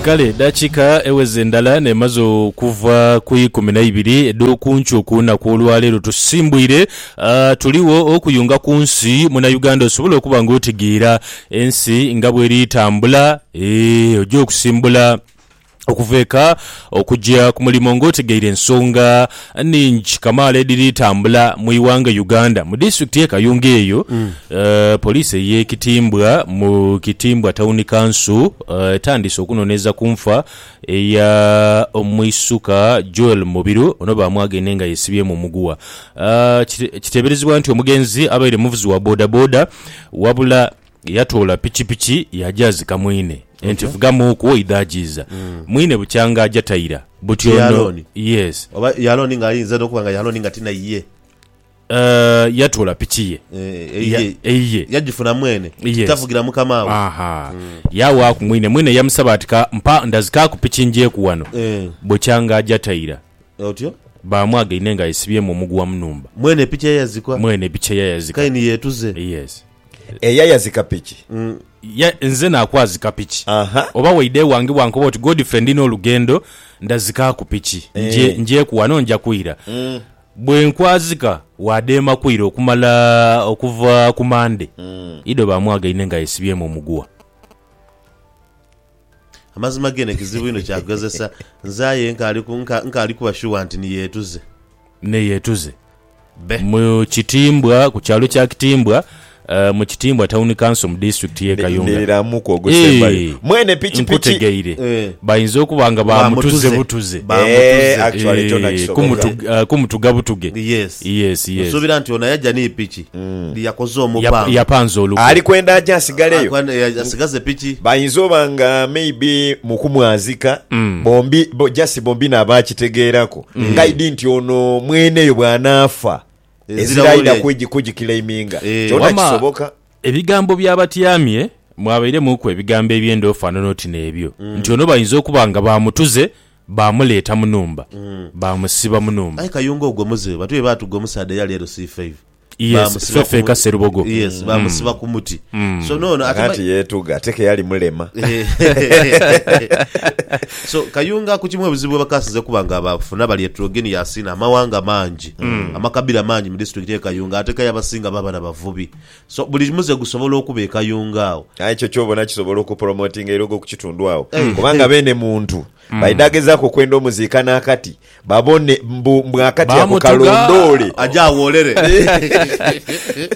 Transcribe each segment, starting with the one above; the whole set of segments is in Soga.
Kale edaakiika eweze ndala n'emaze okuva ku ikumi na ibiri edh'oku nkyo ku lunaku olwaleero tusimbwire ah, tuligho okuyunga ku nsi Munauganda osobole okuba nga otegeera ensi nga bweri tambula eeh oja okusimbula Okuva eka okuja ku mulimo nga otegeire ensonga nhingi kamaala edhiri tambula mu ighanga Uganda. Mu disitulikiti ye Kayunga eyo, poliisi eye Kitimbwa mu Kitimbwa Tawuni Kanso etandiise okunonereza ku nfa eya omwisuka Joel Mubiru ono bamwagaine nga yesibyemu omuguwa. Kiteberezebwa nti omugenzi abaire muvuzi wa boda boda wabula. Yatoola pikipiki yaagyazika mwine enti, Vuga muuku oidha ajiiza. Mwine bukyanga aja taira buti Ti ono. Alooni? Yes. Oba ye Alooni nga ayinza n'okuba nga ye Alooni nga ti naye. Eh, yatoola piki ye. Eh, eyiye. Ya- eyiye. Yagifuna mwene. Yes. Tavugira mukama we. Aha. Yaawaaku mwine. Mwine yamusaba ati, Ka mpa ndazikaaku piki njeeku wano. Eh. Bukyanga aja taira. Otyo. Baamwaga inhe nga yesibyemu omuguwa mu nhumba. Mwene piki eyazikwa. Mwene piki eyayazika. Kaini yeetuze. Yes. Eyayazika piki. Ye, nze naakwazika piki. Aha. Oba waidha ewange bwankoba oti, Godfrey ndina olugendo, ndazikaaku piki. Nje, Eeh. njeeku wano nja kwira. Bwe nkwazika, waadheema kwira okumala okuva ku Mande. Ido baamwaga inhe nga yesibyemu omuguwa. Amazima gene kizibu inho kya kugezesa. Nze aye nkaali kuba shuwa nti ni yeetuze. Ni yeetuze. Be. Mu Kitimbwa, ku kyalo kya Kitimbwa, mu Kitimbwa Tawuni Kanso mu disitulikiti y'e Kayunga. Niriramu kwogose mbali. Eeh, Mwene pikipiki. nkutegeire. Eh. Bainza okuba nga Ba baamutuze mutuze. butuze. Ba mutuze. Eeh, actually kyona Eeh, kisoboka. kumutu, ah, kumutuga butuge. Yes. Yes, yes. Nsuubira nti ono yaja ni piki. Nti yakoze omupango. Yap, yapanze olukwe. Ali kwenda aje asigaleyo. Ali kwenda asigaze piki. Bayinza oba nga maybe mu kumwazika, bombi, bo, just bombi nabaakitegeerako. Ngaidi nti ono mweneyo bw'anaafa, ezira aidha kugi, kugiclaiminga. Kyona kisoboka. Ebigambo by'abatyamye mwabairemuuku ebigambo eby'endhoofano n'oti n'ebyo. Nti ono bayinza okuba nga baamutuze Baamuleeta mu nhumba, baamusiba mu nhumba. Aye Kayunga ogwo muzibe bantu be baatuga omusaadha eyali ere C five Yes, baamusiba Fefe ku eka muti. Serubogo. Yes, baamusiba ku muti. So noono ate Kakati ma- yeetuga ate ke yali mulema. so Kayunga ku kimu ebizibu we bakasinze kuba nga baafuna bali etrogeni yaasiina amawanga mangi, amakabira mangi mu disitulikiti ye Kayunga ate ke abasinga baba na bavubi. So buli muze gusobola okuba e Kayunga agho. Aye ekyo kyobona kisobola okupromotinga eilogo ku kitundu agho Eeh. kubanga beene muntu baidha gezaaku okwenda omuziika n'akati babone mbu mbu akati ako Bamutuga. kalondoole. Aje awoolere.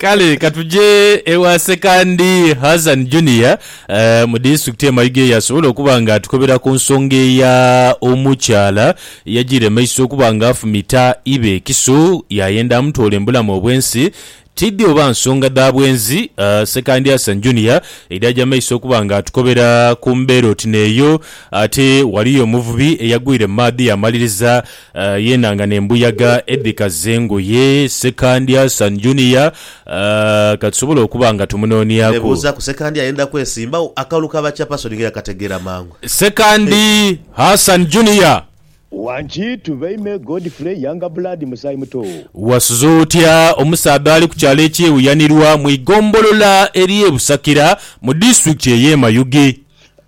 Kale ka tuje ewa Ssekandi Hazan Junior eeh, mu disitulikiti ye Mayuge y'asobola okuba nga atukobera ku nsonga eya omukyala eyajiire mu maiso okuba nga afumita ibe ekiso yaayenda amutwole mu bulamu obw'ensi Tidhi oba nsonga dha bwenzi, Ssekandi Hassan Junior edhaja mu maiso okuba nga atukobera ku mbeera oti n'eyo. Ate ghaliyo omuvubi eyagwire mu maadhi yaamaliriza yeenhangana embuyaga edhikaza engoye. Ssekandi Hassan Junior ka tusobole okuba nga tumunooniaku. Nebuuza ku Ssekandi ayenda kwesimbagho akalulu ka ba Chairperson nga eyakategeera mangu. Ssekandi Hassan Junior. Wangi tube ime Godfrey Younger Blood Musaayi Muto. Wasuze otya omusaadha ali ku kyalo eky'e Wuyanirwa mu igombolola ery'e Busakira mu disitulikiti ey'e Mayuge.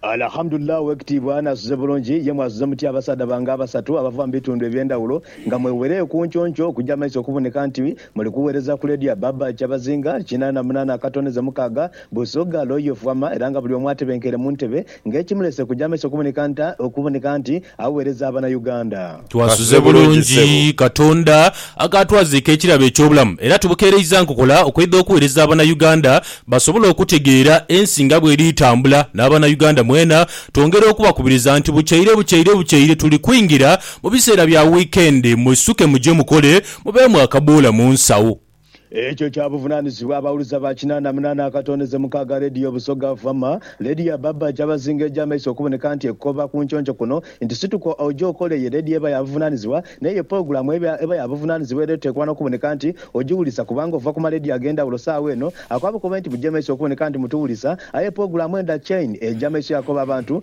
Alahamudullah owekitiibwa nasuze bulungi, ye mwasuze mutya abasaadha bange abasatu abava mu bitundu ebyendawulo nga mwewereyo kunkyonky okuja maiso okuboneka nti Muli kuwereza ku Lady Abab Kyabazinga, kinana munana akatoneze mukaaga, Busoga, Loyo, Fwama era nga buli omu atebenkeire mu ntebe nga ekimulese kuja maiso kuboneka nta okuboneka nti awereza abana Uganda. Twasuze bulungi Katonda akaatwaziika ekirabo eky'obulamu era tubukeereiza nkokola okwedha okuwereza abana Uganda basobole okutegeera ensi nga bweri etambula n'abana Uganda mwena twongera okubakubiriza nti bukyeire bukyeire bukyeire tuli kwingira mu biseera bya weekend mwisuke muje mukole Mubeemu akabuula mu nsawo. Ekyo kya buvunaanizibwa abawuliza ba kinaana munaana akatondeze mukaaga leediyo Busoga Fama, leediyo ya Baba Kyabazinga egy'amaiso okuboneka nti ekoba ku nconco kuno nti Situka oje okole ye leediyo eba ya buvunaanizibwa naye ye pologulaamu eba ya buvunaanizibwa era eteekwa n'okuboneka nti ogiwulisa kubanga ova ku maleediyo ag'endhawulo saawa eno. Akoba kobe nti mugye maiso okuboneka nti mutuwulisa aye pologulaamu enda chain egya maiso yakoba abantu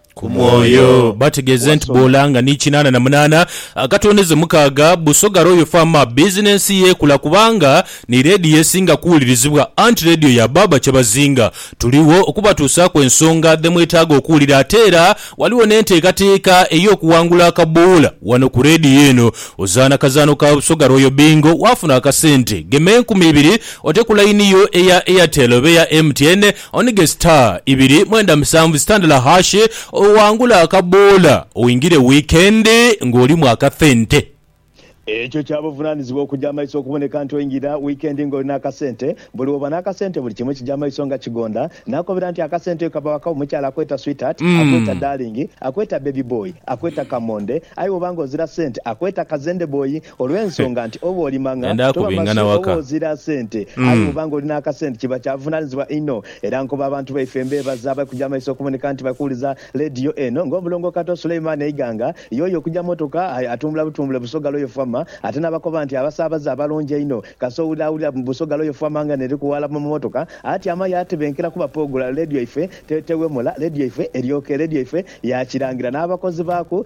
ku mwoyo. Bategeeze nti boola nga ni kinaana na munaana akatondeze mukaaga, Busoga Royal Farm bizinensi ye ekula kubanga ni leediyo esinga kuwulirizibwa anti leediyo ya baaba Kyebazinga. Tuligho okubatuusaaku ensonga dhe mwetaaga okuwulira ate era ghaligho n'enteekateeka ey'okuwangula akaboola wano ku leediyo eno. Ozaana kazaano ka Busoga Royal Bingo waafuna akasente, gema enkumi ibiri ote ku layini yo eya Airtel oba eya MTN. Onige star ibiri mwenda musanvu star ndala hashi owangule akaboola oingire weekend nga olimu akathente. Ekyo kya buvunanizibwa okuja amaiso okuboneka nti oingira weekend nga oli n'akasente. Buli woba n'akasente buli kimu kija amaiso nga kigonda. Nakobera nti akasente kaba waka omukyala akweta sweetheart, akweta darling, akweta baby boy, akweta kamonde aye woba nga ozira sente akweta kazende boy. Olw'ensonga nti oba oli mang'a, toba masu, oba ozira sente, aye bw'oba ng'oli n'akasente kiba kya buvunaanyizibwa inho. Era nkoba abantu baife mbeebaza abali kuja mu maiso okuboneka nti bali kuwuliza leediyo eno, ng'Omulongo Kato Suleiman Eiganga, y'oyo okuja mmotoka atumbula butumbule Busoga Royal Fama, ate n'abakoba nti abasaabaze abalungi einho. Kasita owulira awulira Busoga Royal Fama nga n'eri kuwaala mu mmotoka, atyama yaatebenkera kuba pogula leediyo yaife tewemula, leediyo yaife eryoka, leediyo yaife ya Kirangira n'abakozi baaku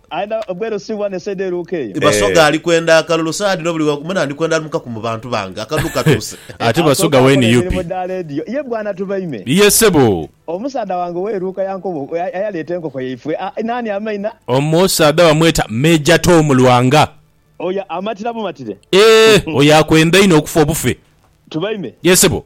Aina obweru si bwa nesaidi eruuka eyo. Basoga ali kwenda akalulu saha dhino buli wamu na ndhikwenda lumukaku mu bantu bange akalulu katuuse. Ate Basoga wee ni yupi? Ye bwana Tubaime. Ye sebo. Omusaadha wange ow'eruuka ya nkobo ayaleeta enkoko yaifwe naani amaina? Omusaadha bamweta Major Tom Lwanga. Oyo amatira bumatire. Eeh oyo akwenda inho okufa obufe. Tubaime. Ye sebo.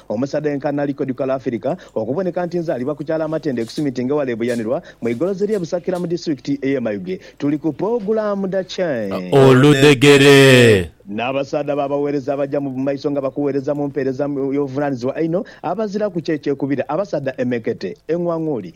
Omusadeenka Nali Kodukala Afirika okuboneka nti nzaalibwa ku kyalo Amatende ku Simitinga eghale Buyanirwa mu igolozi ly'e Busakira mu Disitulikiti ey'e Mayuge. Tuli ku pulogulaamu dha Change. Oludhegere. N'abasaadha be abaweereza abaja mu maiso nga bakuweereza mu mpeereza y'obuvunaanizibwa einho, abaziraku kye kyekubira, abasaadha emekete, eng'wang'uli,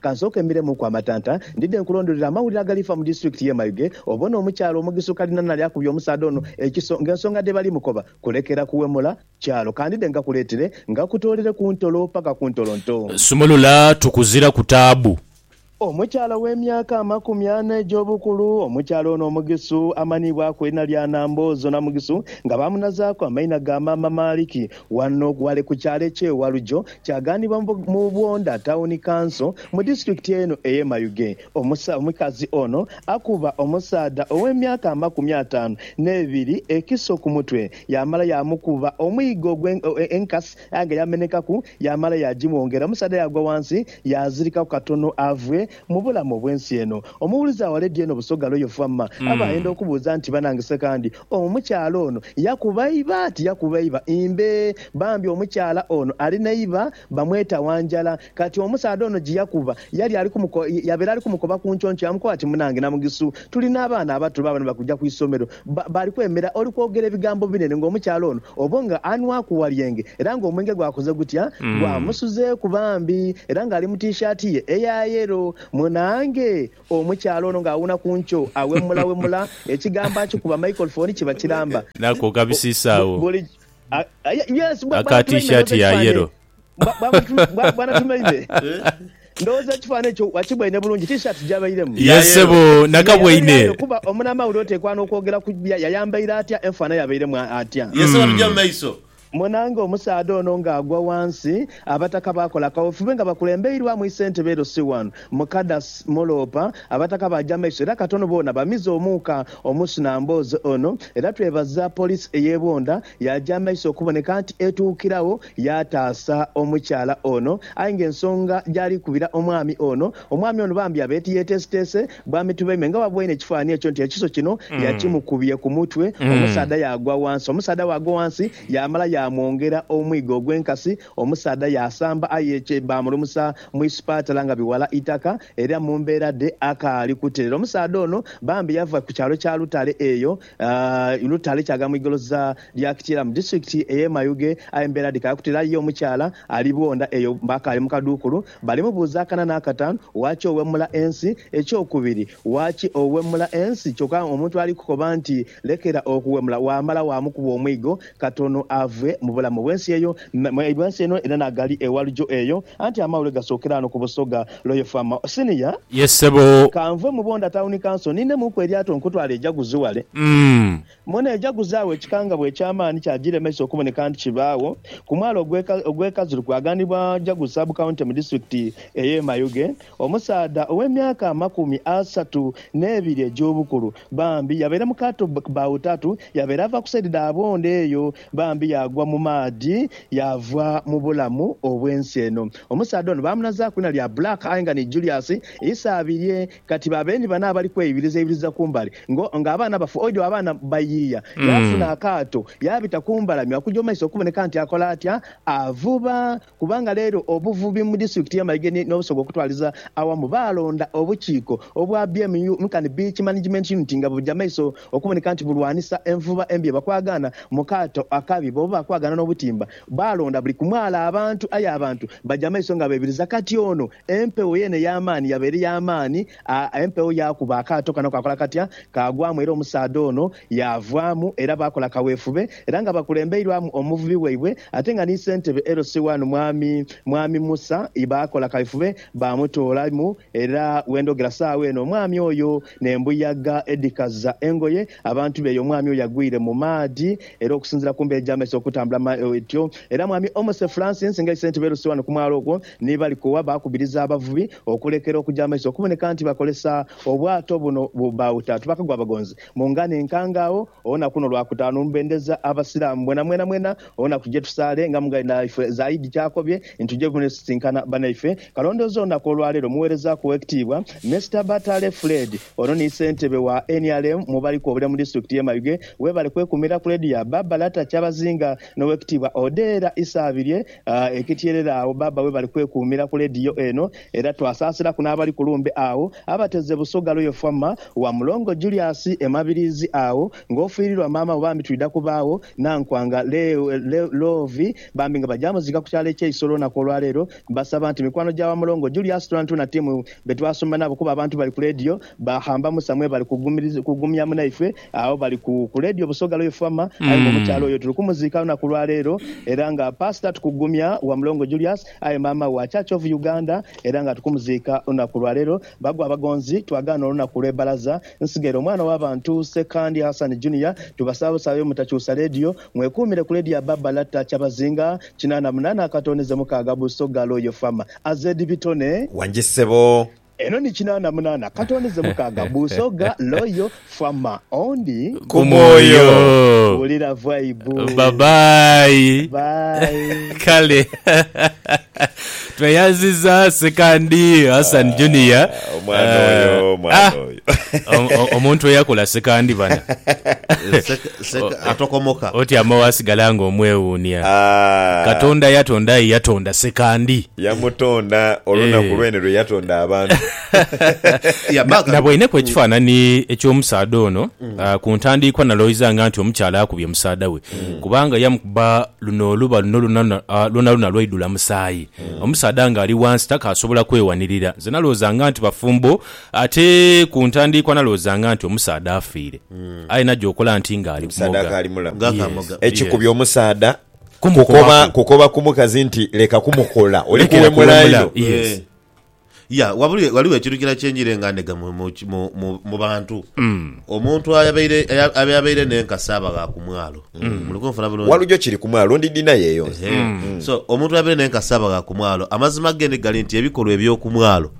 Kansooke mmiremuuku amatanta. Ndidhe nkulondolere amawulire agalifa mu disiturikiti y'e Mayuge, obone omukyala omugisa ukalinana ali akubye omusaadha ono ekiso ng'ensonga dhe bali mukoba kulekera kuwemula kyalo. Ka ndidhe ngakuleetere, ngakutoolere ku ntolo paka ku ntolo nto. Sumulula tukuzira ku taabu. Omukyala ow'emyaka amakumi ana egy'obukulu. Omukyala ono omugisu amanhiibwaku erina lya Namboozo Namugisu nga baamunazaaku amaina ga Maama Maaliki. Ghano ghali ku kyalo eky'e Walujo, kyaganibwa mu Bwondha Tawuni Kanso mu disitulikiti eno ey'e Mayuge. Omukazi ono akuba omusaadha ow'emyaka amakumi ataanu n'ebiri ekiso ku mutwe, yaamala yaamukuba omwigo ogw'enkasi aye nga yamenekaku, yaamala yaagimwongera omusaadha yaagwa ghansi yaazirikaku katono avwe mu bulamu obw'ensi eno. Omuwulizi aghale ddi eno Busoga Royal Fama aba ayenda okubuuza nti, Banange Ssekandi Omukyala ono yakuba iba ati yakuba iba imbe bambi omukyala ono alina iba bamweta Wanjala kati omusaadha ono jiyakuba yali alikumuko yabera alikumokoba kunkyonky yamukoba ati munange Namugisu tulina abaana abato babano balikuja kwisomero ba bali kwemera oli kwogera ebigambo binene nga omukyala ono obo nga anwaku walyenge era nga omwenge gwakoze gutya gwamusuzeku bambi era nga ali mu T-shirt ye eya yellow munange Omukyala ono nga awuuna ku nkyo, awemulawemula, ekigambo akikuba microphone kiba kiramba. Nako kabisisa agho aka t-shirt ya yellow. Bwana Tumeime, ndhowooza ekifaananyi ekyo wakibwaine bulungi, t-shirt gy'abairemu. Ye ssebo, nakabwaine. Yayambaire kuba omunamawulire oteekwa n'okwogera ku bye yayambaire atya, enfaanha y'abairemu atya. Ye ssebo, tugya mu maiso. Monanga omusaadha ono nga agwa wansi, abataka bakola kawefube nga bakulembeirwamu isentebe Elosi One Mukadas Muloopa, abataka baja maiso era katono boona bamize omuuka omusu na mboozi ono era twebaza police eye Bwondha yaja maiso okuboneka nti etuukiragho yataasa omukyala ono aye nga ensonga gyali kubira omwami ono Omwami ono bambi abe ti yeteeseteese bwami tube me nga bwaboine ekifaanhi ekyo nti ekiso kino yakimukubye ku mutwe, omusaadha yaagwa wansi. Omusaadha bwagwa wansi yaamala yaamwongera omwigo ogw'enkasi. Omusaadha yaasamba aye kye baamulumusa mu isipatala nga biwala itaka era mu mbeera dhe akaali kuterera. Omusaadha ono bambi yava ku kyalo kya Lutale eyo Lutale kyaga mu igoloza lya Kityera mu disitulikiti ey'e Mayuge aye embeera dhikaali kuterera aye ye omukyala ali bwondha eyo akaali mu kaduukulu Balimubuuzaakana n'akataanu, Waaki owemula ensi? Ekyokubiri, Waaki owemula ensi? Kyokka omuntu ali kukoba nti, Lekera okuwemula, waamala waamukuba omwigo katono ave mu bulamu bw'ensi eyo, bw'ensi eno era n'agali ewalugyo eyo. Anti amawulire gasookera ghano ku busoga Loyofama. Siniya. Ye ssebo. Ka nve mu Bondha Tawuni Kanso ninnemuuku eryato nkutwale e Jaguzi wale. Umm. Mona ejaguzaagho ekikangabwa eky'amaani kyagiremesa okuboneka nti kibaagho ku mwalo ogw'e Kazulu kwaghanibwa Jagu Sub County mu disitulikiti ey'e Mayuge. Omusaadha ow'emyaka amakumi asatu n'ebiri egy'obukulu bambi yabaire mu kaato bawutatu yabaire ava ku saidi dha Bwondo eyo bambi yaagwa mu maadhi yaava mu bulamu obw'ensi eno. Omusaadha ono baamunazaaku iina lya Black aye nga ni Julius Isabirye Kati babe ni bano abali kweibirizaibiriza ku mbali ngo nga abaana abafu. Oidhi abaana bayiiya, yaafuna akaato yaabita ku mbalame okugya mu maiso okuboneka nti akola atya? Avuba. Kubanga leero obuvubi mu disitulikiti y'e Mayuge ni n'Obusoga okutwaliza awamu baalonda obukiiko obwa BMU nkani Beach Management Unit nga bwebugya maiso okuboneka nti bulwanisa envuba embi ebakwagaana mu kaato akabi bwobuba bakwagaana n'obutimba Baalonda buli ku mwala abantu, aye abantu baja amaiso nga beebiriza. Kati ono empewo yeene ey'amaani yaba eri ya maani, a, empewo yaakuba akaato kano kaakola katya? Kaagwamu, era omusaadha ono yaavwamu, era baakola kaweefube, era nga bakulembeirwamu omuvubi waibwe, ate nga ni Sentebe LC wano, Mwami, Mwami Musa, baakola kaweefube baamutoolamu, era we ndhogera saagho eno, omwami oyo N'embuyaga edhikaza engoye abantu be eyo omwami oyo agwire mu maadhi. Era okusinziira ku mbeera egy'amaiso okutambula mu etyo, era mwami Omose Francis nga aise nti beeruse wano ku mwalo ogwo ni Balikowa baakubiriza abavubi okulekera okuja amaiso okuboneka nti bakolesa obwato buno bauta tubakagwa abagonzi mu ngano enkangaagho. Olunaku luno lwa kutaanu lubendeza Abasiraamu mwenamwena mwena olunaku je tusaale nga mughaire naife Zaidi ky'akobye nti tuje kusisinkana banaife. Kalondoozi olunaku olwaleero omuweerezaaku ow'ekitiibwa Mister Batale Fred ono ni Ssentebe wa nrm mu bali kwobulira mu disitulikiti y'e Mayuge webale kwekuumira ku leediyo ya Baaba Lata Kyabazinga n'owekitiibwa Odeera Isaabirye ekityerere agho Baaba webale kwekuumira ku leediyo eno Era twasaasilaku n'abali ku lumbe agho abateze Busoga Royal Fwama wa Mulongo Julius e Mabiriizi agho ng'ofiirirwa maama we bambi twidha kubaagho Nankwanga Love bambi nga baja muziika ku kyalo eky'e Isolo olunaku olwaleero Mbasaba nti mikwano gya wa Mulongo Julius twonatwona timu be twasomba nabo kuba abantu bali ku leediyo baghamba Musa mwebale kugumya munaifwe agho bali ku leediyo Busoga Royal Fwama aye nga omukyala oyo tuli kumuziika olunaku lwaleero era nga Paasita tukugumya wa Mulongo Julius Aye maama wa Church of Uganda era nga tukumuziika lunaku lwa leero. Bagwa abagonzi twagaana olunaku lwe balaza nsigere omwana wa bantu Ssekandi Hassan Junior tubasaba busabe mutakyusa leediyo mwekuumire ku leediyo ya Baba Latta Kyabazinga kinaana munaana akatooneze mukaaga Busoga Loyal Farm. Azed Bitone. Wangi ssebo Eno ni kinaana munaana, katondeze mukaaga, buusogha, loyo, fama, ondi. Ku mwoyo. Wulira vibe. Bye bye. Bye. Kale tweyanziza Sekandi Hassan Junior. Ah, omwana oyo, Ah, omwana ah. oyo. O- o- Omuntu eyakula Sekandi bana. Seka- seka- atokomoka. Otyama wasigala nga omwewuunia. Ah. Katonda yatonda aye yatonda Sekandi. Yamutonda olunaku Eh. lwene lwe yatonda abantu. Ya, Na- baagala- nabwaineku ekifaanani eky'omusaadha ono ah, ku ntandiikwa nalowoizanga nti omukyala akubye musaadha we kubanga yamukuba luno oluba luno lwona- ah, lwonalwona lwaidula musaayi omusaadha ng'ali wansi takaasobola kwewanirira nze nalowoozanga nti bafumbo ate ku ntandiikwa nalowoozanga nti omusaadha afiire aye najja okola nti ng'ali Omusaadha kumoga akaali mulamu. Nga akamoga. Yes. Ekikubye omusaadha kumukobaku. Kukoba ku mukazi nti leka kumukola, oli Lekera kuwemula kuwemula, inho. yes. Eh. Ya, wabuli- ghaligho ekintu kilala kye njiire nga ndhega mu- mu ki- mu- mu- mu bantu. Omuntu ayabaire aya- ayabaire n'enkasi aba gha ku mwalo. Muli kunfuna bulungi? Walujo kiri ku mwalo ndi dina yeyo nze. Ehe. so omuntu abeire nenkasi aba gha ku mwalo amazima ge ni gali nti ebikolwa eby'oku mwalo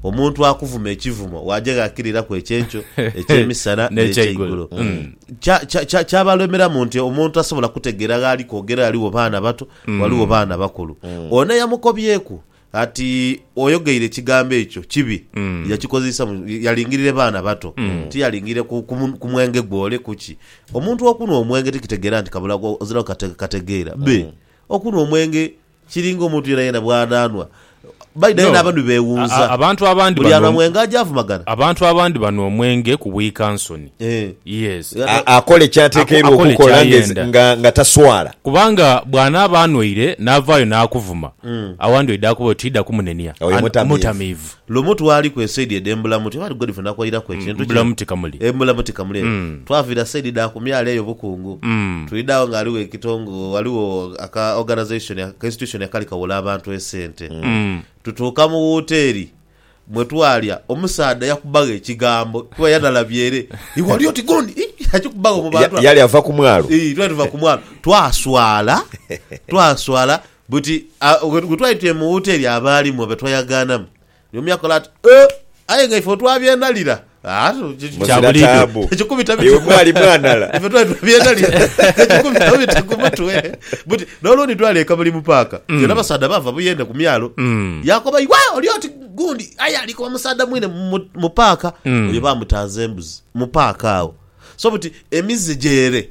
omuntu akuvuma ekivumo waja ghakiriraku ekyenkyo ekyemisana N'ekyeigulo. n'ekyeigulo Kya, kya, kya, kyabalemeramu nti omuntu tasobola kutegeera gh'ali kwogera, ghaligho baana bato, ghaligho baana bakulu. Ono eyamukobyeku ati oyogeire ekigambo ekyo kibi, yakikozesa mu- yalingirire baana bato, tiyalingirire ku, ku, mu- ku mwenge gwole kuki. Omuntu okunwa omwenge tikitegeera nti kabula gwo- oziraku kate, kategeera. Be, okunwa omwenge Kiri ng'omuntu yenayena bw'anaanhwa baidha aye No. n'abanhwi beewunza. A- abantu abandi Buli banhwa bano- mwenge aja avumagana. Abantu abandi banhwa omwenge ku bwikansoni. Eh. Yes. A- A- Akola ky'atekeirwa Ako- akola okukola nga ky'ayenda. nga- nga taswala. Kubanga bw'anaaba anhwaire n'avaayo n'akuvuma, awandi oidha kuba oti idha kumunenia. Oyo An- mutamiivu. mutamiivu. Lumu twali ku esaidi edhe Mbulamuti oba Godfrey nakuwairaku ekintu kino Mbulamuti Kamuli. e Mbulamuti Kamuli eyo. Twaviira saidi dha ku myalo eyo Bukungu twidha agho nga ghaligho ekitongo ghaligho aka organisation aka institution akali kawola abantu esente. Tutuuka mu wooteeri mwe twalya omusaadha yakubagho ekigambo kuba yanalabye ere iwe oli oti gundi ii yakikubagho mu bantu Ya- abo. yali ava ku mwalo. Ii twali tuva ku mwalo twaswala twaswala Buti gwe twali twemughuta eri abaalimu be twayagaanamu, ni omu yakola ati, Oh, aye nga ife otwabyenalira! Kya buliidho, tekikubita bitu ku mutwe. Ife twali twabyenalira, tekikubita bitu ku mutwe. Buti n'olundi twali e Kabulimu Paaka, tuli n'abasaadha baava buyende ku myalo. Yaakoba, Iwe oli oti gundi aye ali kuba musaadha mwine mu paaka. Oyo baamutanza embuzi mu paaka agho. So buti emize gye ere.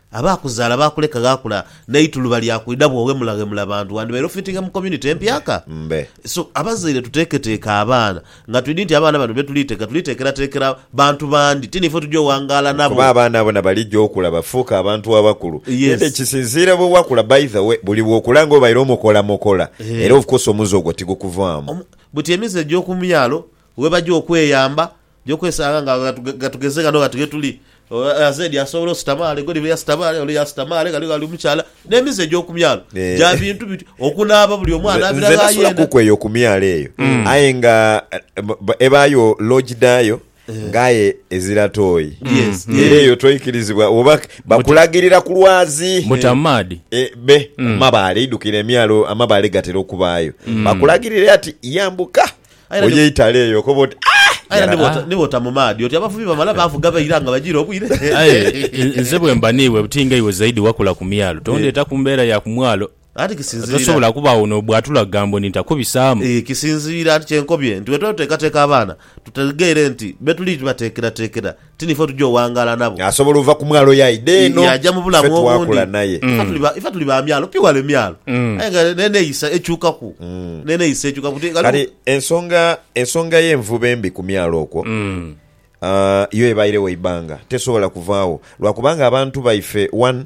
Abaakuzaala baakuleka ghakula n'eituluba lya kwidha bw'oghemulaghemula bantu wandibaire ofitinga mu community empyaka. Mbe. So, abazaire tuteeketeeke abaana nga twidhi nti abaana bano be tuliiteka tuliteekerateekera bantu bandi, ti niife tugya owangaala nabo. Kuba abaana bona baligya okula bafuuke abantu abakulu. Yes. Ate kisinziira bwe wakula by the way, buli bw'okula nga obaire omukolamokola Eeh. era of course omuze ogwo tigukuvaamu. Omu, buti emize egy'oku myalo webagya okweyamba Oja okwesanga nga ghatugeze ghano ghati ghetuli, azeedi asobola ositama ghale, Godfrey yasitama ghale, ole yasitama ghale, ghaligho ali omukyala, n'emize egy'oku myalo gya bintu biti, okunaaba buli omu anaabira gha yena. Nze nasulakuku eyo ku myalo eyo hmm. aye nga eh, ebaayo loogi dhaayo Eh. ngaye ezira toyi mm. era eyo toikirizibwa oba bakulagirira ku lwazi mutamaadi eh. eh, be mm. mabaale idukira emyalo amabaale gatera okubaayo mm. bakulagirira ati yambuka Aye era ni- Oyeitale eyo okoba oti "Ah, aye era yarabi." nibwota- nibwota mu maadhi oti abavubi bamala baavuga baira nga bajiire obwire. Aye n- nze bwe mba n'iwe buti nga iwe zaidi wakula ku myalo tondeeta ku mbeera ya ku mwalo Anti kisinziira tosobola kubaawo n'obwatula kugambo ndi ntakubisaamu. Eh, kisinziira anti kyenkobye nti bwe tuba tuteekateeka abaana tutegeere nti betuli bateekerateekera ti nife otuja owangaala nabo. Asobola ova ku mwalo ye aidha eno, yaja mu bulamu fe twakula naye. Ife tuli ba myalo pi wale myalo aye nga n'eneyisa ekyukaku, n'eneyisa ekyukaku. Kati ensonga, ensonga y'envuba embi ku myalo okwo yo ebairegho eibanga, tesobola kuvaagho lwa kubanga abantu baife one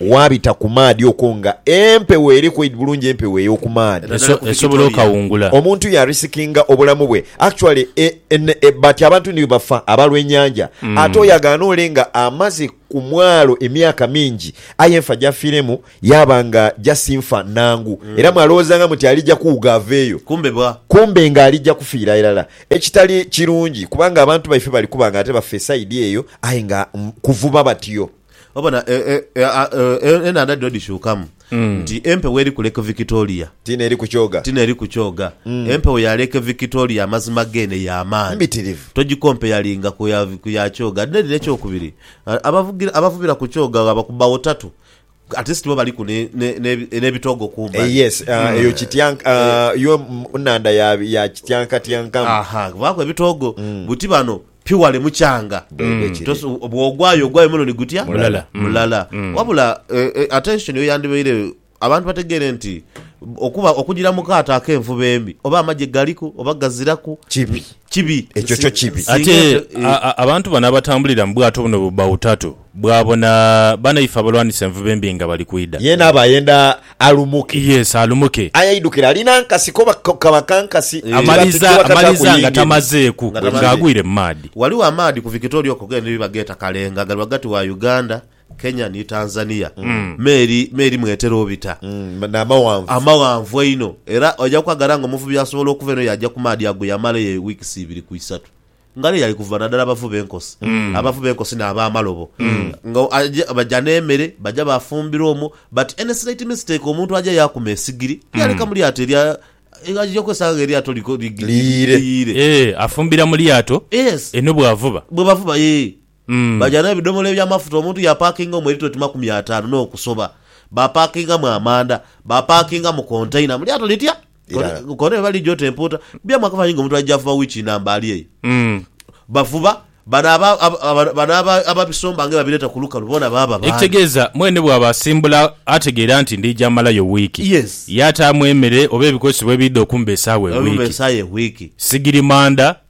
Waabita ku maadhi okwo nga empewo eri quaid bulungi empewo eyoku maadhi. Esobola okawungula. Omuntu ya risikinga obulamu bwe actually e but abantu ni bwebafa abalwa enyanja ate oyo agaana ole nga amaze ku mwalo emyaka mingi aye enfa jafiremu yaba nga just nfa nangu era mwalowozanga muti alija kuwuga aveeyo kumbe nga alija kufiira irala ekitali kirungi kubanga abantu baife bali kuba nga ate baffa e side eyo aye nga kuvuba batyo. Obona e- e- e- a- e- enhandha dhino dhishuukamu nti empewo eri ku Lake Victoria Tiina eri ku kyoga. ti n'eri ku kyoga. Empewo ya Lake Victoria amazima geene ya maani. Mbitirivu. Togikompeyalinga ku ya, ku ya kyoga. Ate n'eri n'ekyokubiri, a- abavugira, abavubira ku kyoga ghaba ku bbawo tatu, at least bo baliku ne- ne- ne- n'ebitoogo Eh, kumbali. yes, ah, eyo kityank- ah, yo mm, nnhandha ya- ya kityankatyankamu. Aha, kubaaku ebitoogo. Buti bano Pi wale mukyanga. Bwebwe kiri. Toso- Bwogwayo ogwayo mulundi gutya? Mulala. Mm. Mulala. Mm. Wabula eh, eh, attention yo yandibaire abantu bategeere nti okuba okugira mu kaato ak'envuba embi oba amagye galiku oba gaziraku Kibi. kibi. Ekyo kyo kibi. Singa Ate eto- eh, a- a- abantu bano abatambulira mu bwato buno bu bautatu bwabona banaife abalwanisa envuba embi nga bali kwidha. Yeena aba ayenda alumuke. Yes alumuke. Aye aidukire alina nkasi koba kaba kankasi Amaliza amaliza nga tamazeeku nga agwire mu maadhi. Ghaligho amaadhi ku Victoria okwo gene ni bageeta Kalenga gali ghagati wa Uganda, Kenya ni Tanzania me eri me eri mwetera obita. N'amaghanvu. Amaghanvu einho era oja kwagala nga omuvubi asobola okuva eno yaja ku maadhi ago yamalayo weeks ibiri ku isatu. Ngalo yaali kuvuba nadala abavu b'enkosi, abavu b'enkosi n'ab'amalobo, nga aja baja n'emere, baja baafumbira omwo. But any slight mistake omuntu aja yaakuma esigiri, yaaleka mu lyato erya, aja okwesanga nga eryato li, li, Liyiire. liyiire. Eeh, afumbira mu lyato Yes. eno bw'avuba. Bwe bavuba, eeh. Baja n'ebidhomola eby'amafuta omuntu yaapakinga omwo eritiro ti makumi ataanu n'okusoba. Baapakingamu amanda, baapakingamu kontaina mu lyato litya? Kontaina eba liija oti empuuta. Bya mwaka fanhi ng'omuntu aija avuba wiiki namba ali eyo. Bavuba, bano aba, aba, bano aba, ababisomba nga ebabireeta ku lukalu boona baaba baani? Ekitegeeza mwene bw'aba asimbula ategeera nti ndija malayo wiiki. Yes. Yaataamu emere oba ebikozesebwa ebiidha okumba esaawa Okumba ewiiki. esaawa ewiiki. Sigiri manda,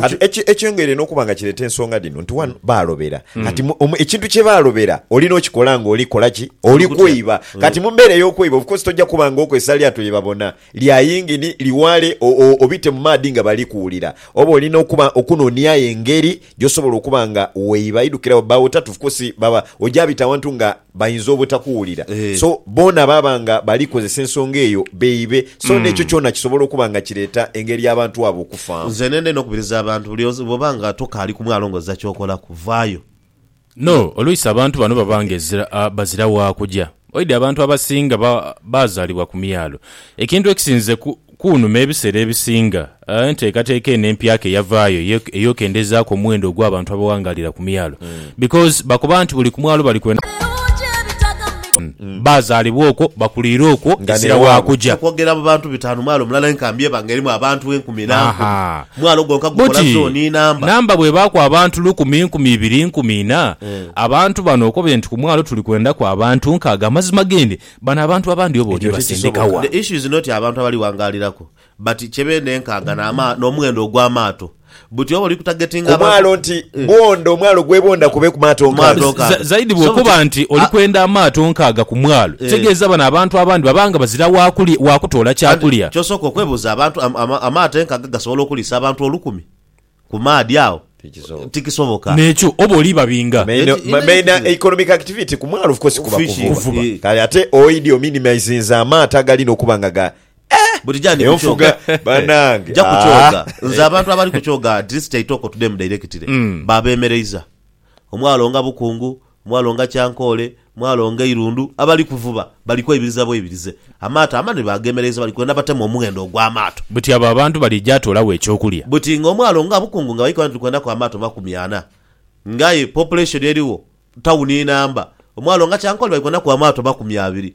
Kati ekyongeire n'okuba nga kireeta ensonga dhino nti wanu baalobera. Kati ekintu kye baalobera olina okikola nga oli kola ki? Oli kweiba. Kati mu mbeera ey'okweiba of course tojja kuba nga okozesa lyato lye babona lya yingini, liwaale obite mu maadhi nga bali kuwulira. Oba olina okuba okunoonia engeri gy'osobola okuba nga weiba. Idukira bwe baawo tatu of course baba oja bita awantu nga Bainza obutakuwulira. So, boona baba nga bali kozesa ensonga eyo beibe. So, n'ekyo kyona kisobola okuba nga kireeta engeri y'abantu abo okufaamu. Nze nendha inho okubiriza abantu, buli onse, bw'oba nga tokaali ku mwalo ng'ozira ky'okolaku, vaayo. No, oluisi abantu bano baba ng'ezira, bazira wa kuja. Oidhi abantu abasinga ba, baazaalibwa ku myalo. Ekintu ekisinze ku, Kuunuma ebiseera ebisinga, enteekateeka eno empyaka eyavaayo ey'okendezaaku omuwendo ogw'abantu abawangaalira ku myalo because bakoba nti buli ku mwalo bali kwenda baazaalibwa okwo, bakuliire okwo ezira wa kuja. Okwogera mu bantu bitaanu mwalo mulala aye nkambi eba nga erimu abantu enkumi na nkumi. Mwalo gwonka gukola zooni inamba. Namba bw'ebaaku abantu lukumi, nkumi ibiri, nkumi ina, abantu bano okobye nti ku mwalo tuli kwendaku abantu nkaaga, amazima g'endi Bano abantu abandi oba oti basindika wa? The issue is not abantu abali wangaaliraku but kye beenenkanga n'omughendo ogw'amaato. Buti oba oli ku targetinga abantu. Omwalo nti bwondha, omwalo gwebondha kubeeku maato nkaaga. Zaidi bw'okoba nti oli kwenda amaato nkaaga ku mwalo, kitegeeza bano abantu abandi baba nga bazira wa kutoola kyakulya. Ky'osooka okwebuuza, abantu amaato enkaaga gasobola okuliisa abantu olukumi? ku maadhi agho Tikisoboka. tikisoboka. Nekyo oba oli babinga. Main, Enti- ma- main enti- economic activity ku mwalo of course kuba Fish, kuvuba. kuvuba. Eh. Kale ate oidi ominimizinze amaato agalina okuba nga ga Buti gyandi eyo nfuga kukyoga. banange. Ja kukyoga. Ah. Nze abantu abali kukyoga at least Kyaitoko to them directly babemereiza. Omwalo nga bukungu, Mwalo nga Kyankoole, mwalo nga Eirundu, abali kuvuba bali kweibiriza bweibirize amaato amanene baageemereiza bali kwenda batemu omughendo ogw'amaato. Buti abo abantu balija atoolagho eky'okulya. Buti nga omwalo nga Bukungu nga bali koba nti tuli kwendaku amaato makumi ana nga aye population erigho tawuni inamba, omwalo nga Kyankoole bali kwendaku amaato makumi abiri